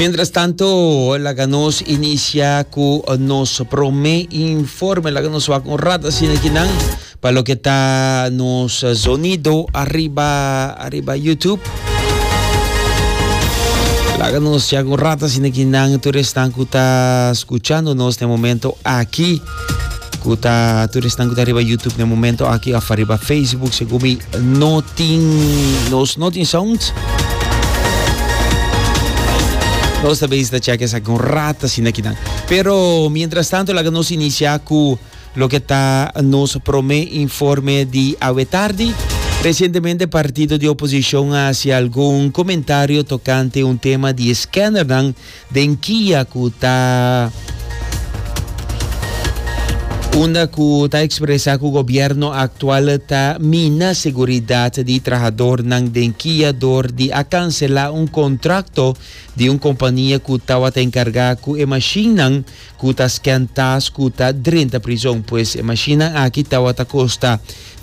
Mientras tanto, laga nos inicia cu nos prome informe. Laga nos wak un rata sin aquí nan. Pa lo que ta nos sonido arriba, arriba YouTube. Laga nos ya un rata sin aquí nan. Toeres nan cu ta escuchando nos na momento aquí. ku ta tur esnan ku ta riba YouTube na momento aki of riba Facebook se gumi no tin nos no tin sound nos ta bezig ta check esa kon rata sin aquí dan pero mientras tanto laga nos inicia ku lo que ta nos prome informe di awe tardi Recientemente partido di oposición a hacia algún comentario tocante un tema di scanner dan Den kia ku ta unda ku ta ekspresá ku gobièrnu aktual ta mina seguridat di trahadornan den kia dor di a kanselá un kontrakto di un kompania ku tabata enkargá ku e mashinnan ku ta skèn tas ku ta drenta prizon. Pues e mashinnan aki tabata kosta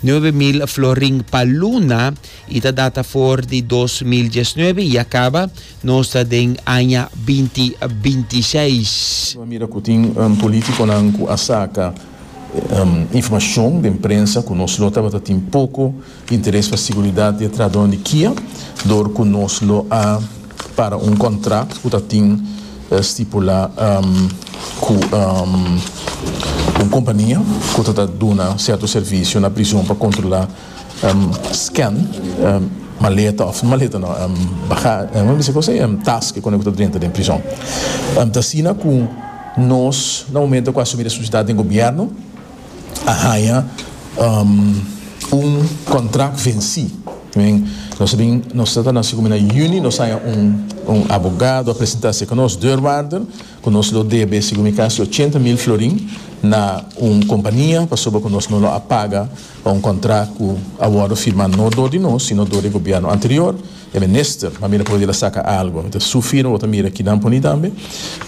nuebe mil florin pa luna. I ta data for di dos mil diesnuebe i a kaba, nos ta den aña binti binti seis. Nos a mira ku tin polítikonan ku a saka informashon den prensa ku nos lo tabata tin poko interes pa seguridat di e trahadónan di Kia dor ku nos lo a para un kòntrak ku ta tin stipulá ku un kompania ku ta duna sierto servisio na prison pa kontrolá scan, maleta of maleta no baga mi bisa cosa e tas ki kende ku ta drenta den prison ta asina ku nos na momento ku asumi responsabilidad den gobierno a haña un contract venci mean nos ta bin nos ta na asina komo na juni nos haña un abogado a presenta se ka nos deurwaarder. Ku nos lo debe, segun mi kasi, ochenta mil florin na un kompania pasobra ku nos no lo a paga pa un kontrakt ku a wòrdu firmá no dor di nos, sino dor di e gobièrnu anterior, e minister. M'a mira ku Rodil a saka algu. Mi ta su firma, bo ta mira kidan puni tambe,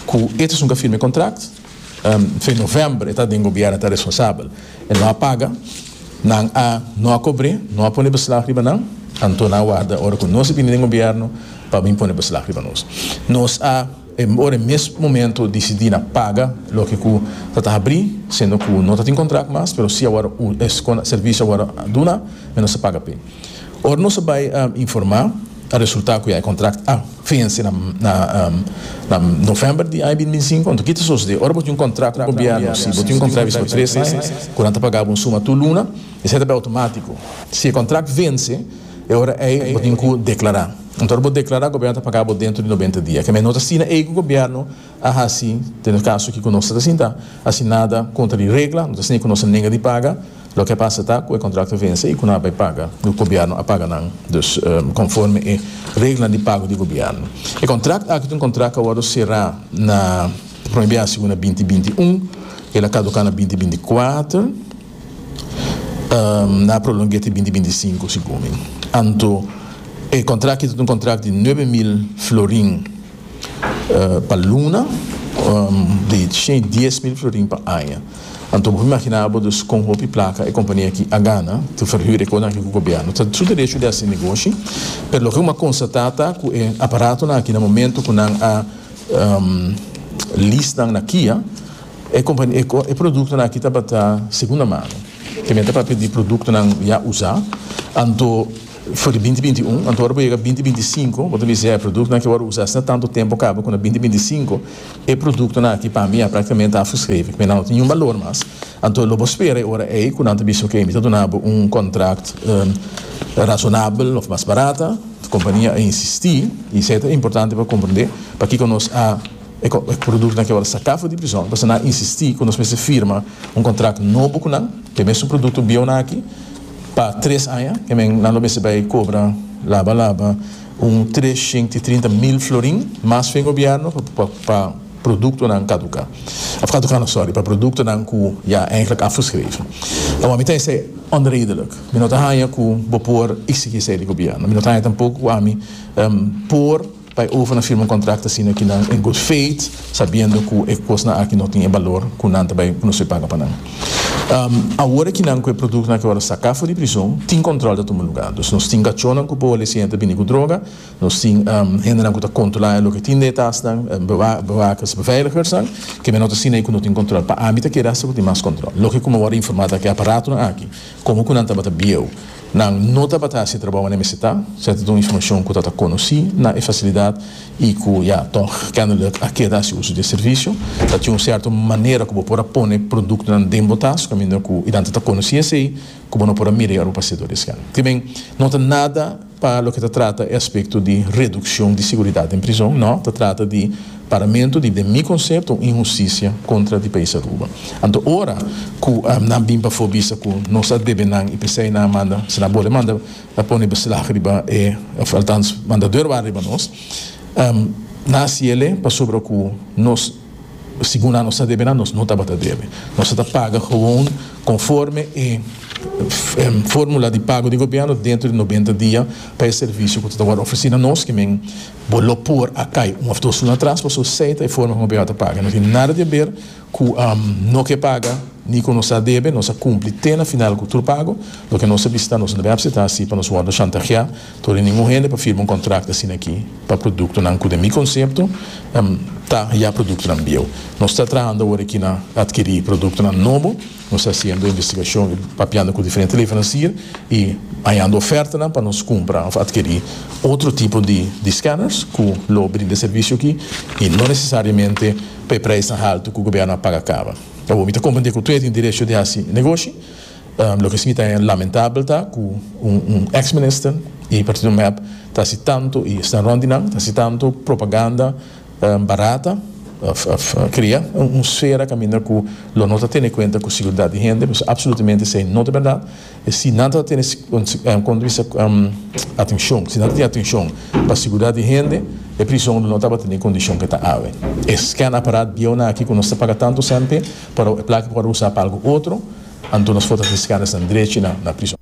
ku e ta sun ku a firma e kontrakt. Fe novèmber e ta den gobièrnu, e ta responsabel. E no a paga, nan a no a kobr'é, no a pone beslag riba nan, anto nan a warda ora ku nos a bini den gobièrnu pa bin pone beslag riba nos. Nos a. E por e mes momento dicidi na paga loke cu ta ta habri, siendo cu no ta tin contract mas, pero si a word escon servicio a word a duna, me nos a paga p'e. Ora nos a bay a informa, a resulta cu ya e contract a fence na na november di aña bin binsinco. Anto kita sosode? Ora bo tin un contract cu gobierno, si bo tin un contract di por tres aña, cu nan ta paga bo un suma tur luna, esey ta bay automatico. Si e contract vence. E ora ei bo tin ku deklará. Anto ora bo deklará, gobièrnu ta pagá bo dentro di noventa dia. Kemei no ta asina ei ku gobièrnu a hasi den e kaso aki ku nos ta sinta hasi nada kontra di regla, no ta asina ku nos a nenga di paga. Loke a pasa ta ku e kontrakto a vense i ku nan a bai paga lo ku gobièrnu a paga nan, dus konforme e reglanan di pago di gobièrnu. E kontrakt aki ta un kontrakt ku a wòrdu será na prome biaha segun na binti binti un. El a kaduká na binti binti kuater. na prolong'é te binti binti sinku, segun mi. Anto e kontrakt aki ta un kontrakt di nuebe mil florin pa luna i shei dies mil florin pa aña. Anto bo por imaginá abo dus kon hopi plaka e kompania aki a gana te ferhür e kosnan aki ku gobièrnu. Ta su derecho di hasi negoshi, pero loke bo a konstatá ta ku e aparatonan aki na momento ku nan a list nan na Kia, E produktonan aki tabata segunda mano, temé ta papia di produktonan ya usá, anto for di binti binti un, anto ora bo yega binti binti sinku bo ta bisa e produktonan ke bo a usá asina tantu tempu kaba ku na binti binti sinku, e produktonan aki pa mi ya praktikamente afgeskreven, ku e nan lo tin niun balor mas, anto lo bo spera e ora ei ku nan ta bisa oke mi ta duna bo un kontrakt rasonabel òf mas barata, kompania a insistí i esei ta importante pa komprendé pakiko nos a. E produktonan ke awor saka for di prison pasobra nan a insisti ku nos mester firma un kontrakt nobo ku nan pa e mesun produkto bieunan aki pa tres aña e men nan lo mester bai kobra laba laba un tres shent i trinta mil florin mas fen gobièrnu pa produktonan kaduká òf kaduká no sòri pa produktonan ku ya eindelijk afgeschreven awor mi ta esei onredelijk mi no ta haña ku bo por iksigí esei di gobièrnu mi no ta haña tampoku ku ami por. Pa e overnan firma un contract asina aki nan en good faith sabiendo cu e cosnan aki no tin e balor cu nan ta bay pronosey paga pa nan. Awor aki nan cu e productonan aki awor a saca for di prison tin control ta tuma lugar. Dus nos tin cachonan cu boa lesiente a bini cu droga, nos tin hendenan cu ta controla loke tin den e tasnan, bewakers, beveiligersnan, kebe no ta asina y cu no tin control. Pa ami ta kere hasta cu tin mas control. Loke como awor a informa ta cu e aparatonan aki como cu nan tabata bieu. Nan no tabata hasi trabou mane mester ta, se ta duna informacion cu ta ta conoci na e facilidad y cu ya tog kennelijk a keda haci uso di e servicio. Ta tin un cierto manera cu bo por a pone productonan den bo tas, caminda cu y danta ta conoci esey cu bo no por a mira y ora bo pasea door di esken. Temen no ta nada pa loke ta trata e aspecto di reduccion di seguridad den prizon, no, ta trata di. Paramentu di den mi konsepto un inhustisia kontra di País Aruba. Anto ora ku nan bin pafó bisa ku nos a debe nan i p'esei nan a manda si nan bole manda a pone beslag riba e òf altans manda dor wak riba nos nan a siele pasobra ku nos segun nan nos ta debe nan nos no tabata debe nos a ta paga gewoon konforme e fórmula di pago di gobièrnu dentro di nobenta dia pa e servisio ku ta wòrdu ofresí na nos ke men Bo lo por a kai un of dos luna atras pasobra su sei ta e forma ku no bihau ta paga. No tin nada di haber ku no ke paga ni ku nos a debe. Nos a kumpli te na final ku tur pago. Loke nos a bisa ta nos no debe apseta asi pa nos wòrdu shantaheá tur di ningun hende pa firma un kontrakto asina aki pa produktonan ku den mi konsepto ta ya produktonan bieu. Nos ta traha anda awor aki na adkirí produktonan nobo. Nos ta hasiendo investigashon i papiando ku diferente leveransier i hañando ofertanan pa nos kumpra òf atkirí otro tipo di di skanners ku lo brinda e servisio akí i no nesesariamente pa e preisnan haltu ku gobièrnu a paga kaba. Awor mi ta komprendé ku tur tin derecho di hasi negoshi. Loke si mi ta haña lamentabel ta ku un un eks minister i partido mep ta hasi tantu i esnan rònt di nan ta hasi tantu propaganda, barata pa kria un sfera kaminda ku lo no ta tene kuenta ku seguridat di hende, pues apsolutemente esei no ta bèrdat. Si nan ta tene punto di vista atenshon, si nan ta tin atenshon pa seguridat di hende e prison lo no tabata den e kondishon ke ta awe. E scan aparat bieunan aki ku nos ta paga tantu sènte por e plaka por usá pa algu otro, anto nos for ta tin scan esnan drechi na prison.